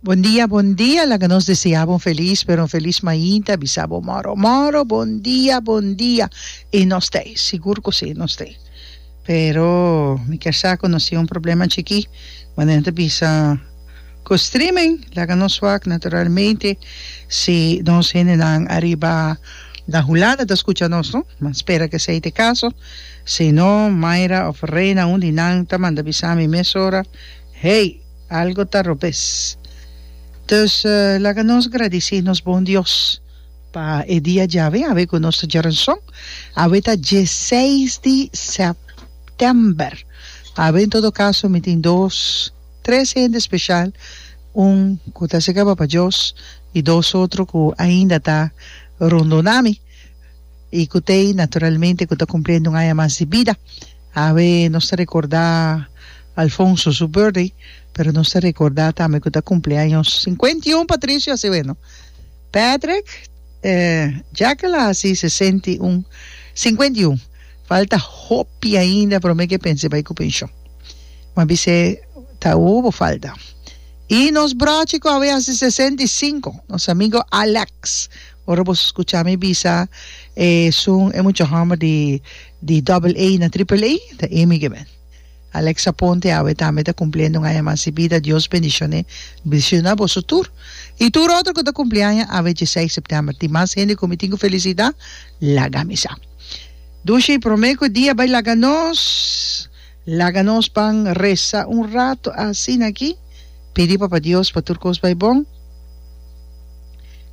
Bon dia bon dia laga nos deseabo un feliz pero un feliz mainta bisa bo moro moro bon dia bon dia y nos ta ey sigur cu si nos ta ey pero mi kier sa cu nos tin un problema chiki cuando nan ta bisa cu streaming laga nos wak naturalmente si nos gentenan ariba na hulanda ta scucha nos no ma spera cu esey ta e caso si no Myra of Reina un di nan ta manda bisa mi mesora Hey! Algo ta robes. Dus laga nos gradici nos bon Dios pa e dia djawe awe cu nos ta djeren son. Awe ta dieseis di september. Awe en todo caso mi tin dos, tres hende special, un cu ta secaba pa Dios y dos otro cu ainda ta rondona mi y cu tey naturalmente cu ta cumpliendo un aña mas di bida. Awe nos ta recorda Alfonso su birthday, pero nos ta recorda tambe cu ta cumpleaños cincuenta y un Patricio a si weno. Patrick, dja ke la hasi sesenta y un, cincuenta y un, falta hopi ainda pero me ke pense bay cu pension. Bo a bis'e ta u bo falta. Y nos brochi cu awe hasi sesenta y cinco, nos amigo Alex, ora bo scucha mi bisa esun e mucha homber di Di double A na triple A ta Amy Given. Alex Aponte awe tambe ta cumpliendo un aña mas di bida, Dios bendicione bdicido na boso tur y tur otro cu ta cumpli aña awe diesei september. Tin mas hende cu mi tin cu felicita, laga misa. Dushi prome cu e dia bay laga nos, laga nos pan reza un rato asina aki, pidi Papa Dios pa tur cos bay bon,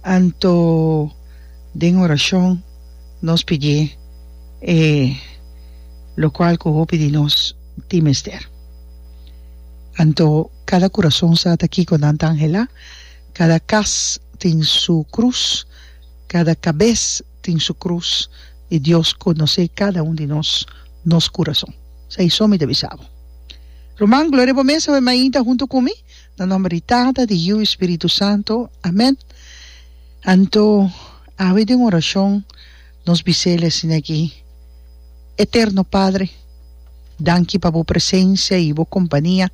anto den oracion. nos pidié e locual cu hopi di nos tin mester. Anto cada curason sa ta kico nan ta angela, cada cas tin su cruz, cada cabes tin su cruz y Dios conoce cada un di nos, nos curason. Sa y so mi ta bisa bo. Ruman, gloria bo mes awe mainta hunto cu mi, na nomber di Tata, di Yiu y Spiritu Santo. Amen. Anto. Awe den orashon nos bis'El asin'akí, Eterno Padre, danki pa Bo presensia i Bo kompania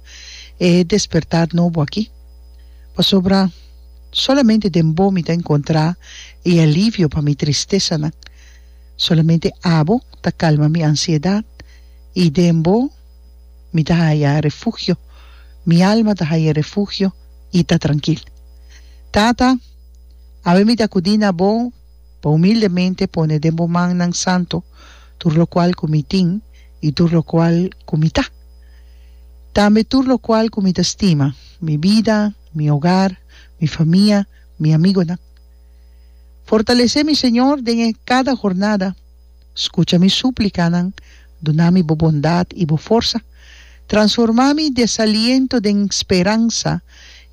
e despertá nobo akí, pasobra solamente den Bo mi ta enkontrá e alivio pa mi tristesanan. Solamente Abo ta kalma mi ansiedat i den Bo mi ta haya refugio, mi alma ta haya refugio i ta trankil. Tata. Awe mi ta kudí na bo pa humildemente pone den bo mannan santu tur lokual ku mi tin i tur lokual ku mi ta, tambe tur lokual ku mi ta stima, mi bida, mi ogar, mi famia, mi amigunan. Fortalesé mi, Señor, den e kada hornada. Scucha mi súplicanan, duna mi bo bondad i bo forsa. Transforma mi desaliento den speransa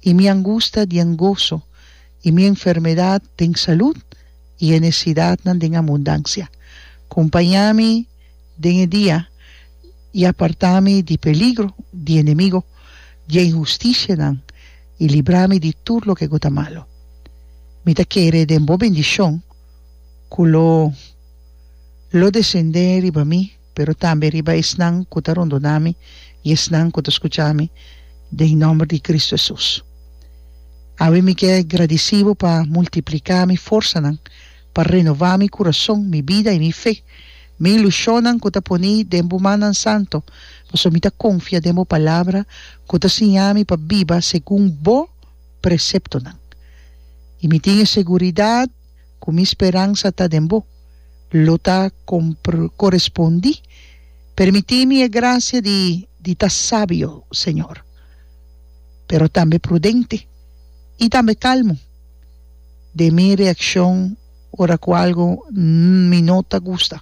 i mi angusta dien goso, i mi enfermedad den salud i e necesidadnan den abundancia. Compañá mi den e dia i apartá mi di peligro di enemigo, di e inhusticianan, i libra mi di tur loke ku ta malo. Mi ta kere den bo bendicion. ku lo lo desendé riba mi, pero tambe riba esnan ku ta rondoná mi i esnan ku ta skuchá mi, den nòmber di Kristu Hesus. Awe mi ke gradisí bo pa multipliká mi forsanan, pa renová mi kurason, mi bida i mi fe, mi ilushonnan ku ta poní den bo mannan santu, pasobra mi ta konfia den bo palabra ku ta siñá mi pa biba segun bo preseptonan. I mi tin e seguridat ku mi speransa ta den bo, lo ta korespondí. Permití mi e grasia di di ta sabio, Señor, pero tambe prudente i tambe kalmu den mi reakshon ora ku algu mi no ta gusta.